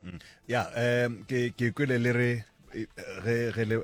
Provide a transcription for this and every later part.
Mm. ya um ke kwele le re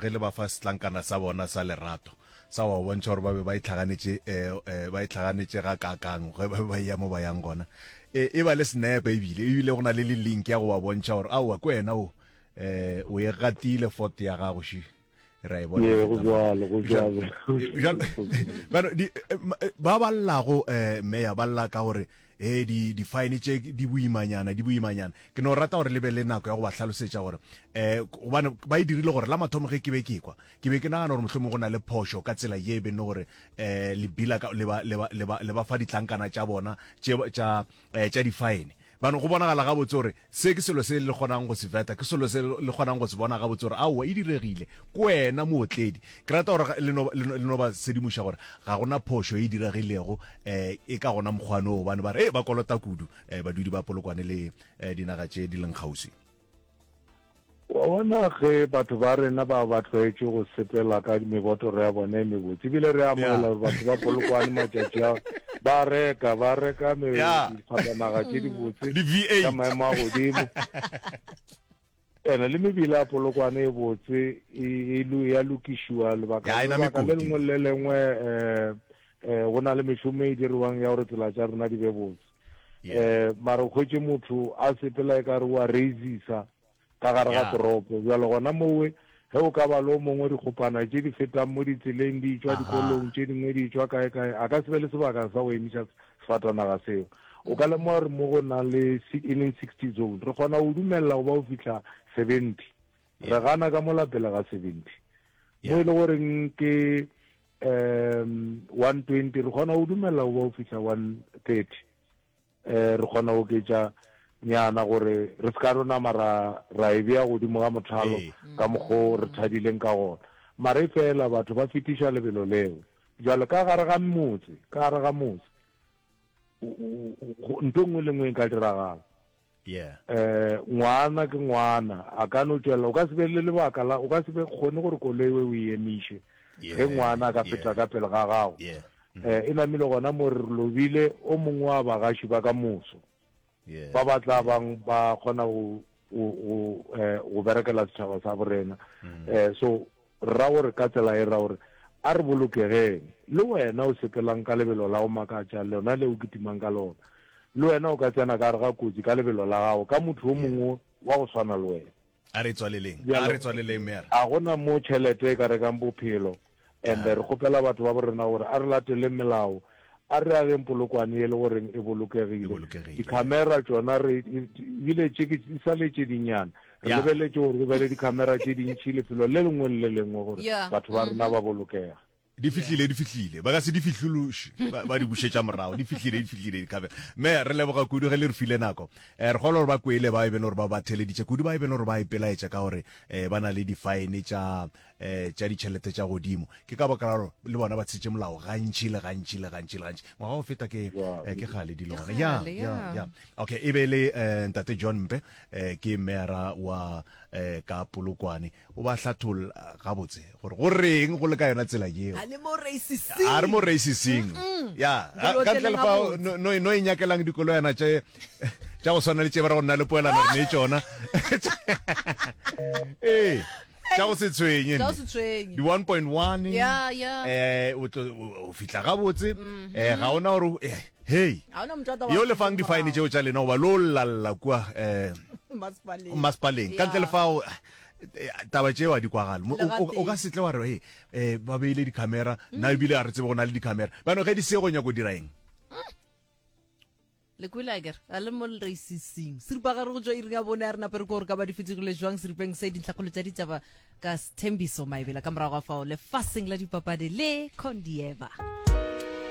ge le ba fa setlankana sa bona sa lerato sa wa bontšha gore ba be ba itlhaganetše eh, eh, ba itlhaganetše ga kakang ge ba be ba eya mo ba yang gona eh, e ba le senepe ebile ebile go na le le link ya go ba bontšha gore aowa ko wena o um o e gatile foto ya gago shi ra e bona go jwalo go jwalo bano di eh, eh, ba ba llago eh meya ba lla ka gore eh di di fine tše di boimanyana di boimanyana ke no rata gore lebe le nako ya go ba hlalosetsa gore eh gobane ba e dirile gore la mathomo ge ke be ke kwa ke be ke nagana gore mohlomong go na le phošo ka tsela ye e benne gore eh lebila le ba le ba le ba fa ditlankana tša bona tša um tša difaene bano go bonagala gabotse gore se ke selo se le kgonang go se veta ke selo se le kgonang go se bona gabotse gore aowa e diregile ko wena mootledi ke rata gore le no- le no- le no ba sedimoša gore ga gona phošo e diregilego um e ka gona mokgwanoo gobane ba re e ba kolota kudu um badudi ba polokwane le um dinaga tše di leng kgauswi Wa bona, ge batho ba rena ba ba tlwaetše go sepela ka mebotoro ya bona e mebotse, ebile re amogela gore batho ba Polokwane matšatši a ba reka ba reka dikgwatanaga tše dibotse ka maemo a godimo ene le mebila ya Polokwane e botse e, e, e, ya lokišiwa lebaka le lengwe le lengwe um go na le mešomo e diriwang ya gore tsela tša rena di be botse um mara o kgwetše motho a sepela e ka re wa reisisa ka gare ga toropo bjalo gona mowe ge o ka ba le o mongwe dikgopana tše di fetang mo ditseleng di tšwa dikolong tše dingwe di tšwa kae kae a ka se be le sebaka sa go emiša sefatanaga seo o ka lemoga gore mo go nang le e leng sixty zone re kgona go dumelela go ba o fitlha seventy re gana ka molapele ga seventy mo e le goreng ke one twenty re kgona go dumela go ba o fitlha one thirty um re kgona go oketša nyana gore re se ka rona mara ra e bea godimo ga mothalo ka mokgo re thabileng ka gona mara e fela batho ba fetiša lebelo leo jalo ka gare ga motse ka gare ga motse ntho nngwe le nngwe e ka diragala Yeah. Eh, ngwana ke ngwana, a ka no tšwela, o ka se be le lebaka la, o ka se be kgone gore koloi we o e emiše. Yeah. Ge ngwana a ka feta yeah. ka pele ga gago. Yeah. Mm -hmm. Eh, e namile gona mo re lobile o mongwe wa bagaši ba ka moso. Yeah. Ba ba tla bang ba kgona go go go eh go berekela setšhaba sa borena. Mm -hmm. Eh, so Ra gore ka tsela e ra gore a re bolokegeng. Le wena o sepelang ka lebelo la go makatša, lona le o kitimang ka lona. Le wena o ka tsena ka gare ga kotsi ka lebelo la gago, ka motho yo mongwe wa go swana le wena. A re tswaleleng, a re tswaleleng, mme a re. A go na mo tšhelete e ka rekang bophelo, and re kgopela batho ba bo rena gore a re lateleng melao. A re ageng polokwane e le goreng e bolokegile. Dikhamera tšona re bile tše ke di sa le tše dinyana. Re lebeletše gore go be le dikhamera tše dintšhi lefelo le lengwe le le lengwe gore batho ba rena ba bolokege. Di fihlile, di fihlile. Ba ka se di fihlološe, ba di bušetša morago. Di fihlile, di fihlile dikhamera. Mme, re leboga kudu ge le re file nako. Re kgolwa gore ba kwele bao e bego gore ba ba theleditše, kudu bao e bego gore ba ipelaetša ka gore ba na le difaene tša eh tša ditšhelete tša godimo ke ka baka lalo le bona ba tshitše molao gantši le gantši le gantši le gantši ngwaga go feta ke eh, ke gale dilo gona ya ya ya okay e be le eh, ntate john mpe eh, ke mera wa eh, ka polokwane o ba hlathol gabotse gore go reng go le ka yona tsela yeo a le mo racising a re mo racising ya Dilo ka tse ntle le fa gabotse. no- no no e nyakelang dikolo yana tše tša go swana le tše ba re go nna le poelano re ne e tšona ee tša go se tshwenye Tša go se tshwenye. di 1.1 Ya, ya. eh o tlo- o- o fihla gabotse eh ga ona gore o- eh, hey ga ona motho a tla wa- yo lefang difine tšeo tša lena goba lo llalla kua um Masepaleng. masepaleng ka ntle Ya. le fao eh, taba tšeo a di kwagale Mo- o- o- o Legateng. ka setle wa re "Hey, eh ba beile dicamera nna ebile a re tsebe go na le dicamera bano ge di se go nyako dira eng Le kwele a ke re, a le mo lreisising. Seripa gare go tšwa iring ya bone a re nape re ko gore ka ba di fetogile jwang seripeng se dintlhakgolo tša ditšaba ka Sthembiso Maebela ka morago ga fao lefaseng la dipapadi le Condieva.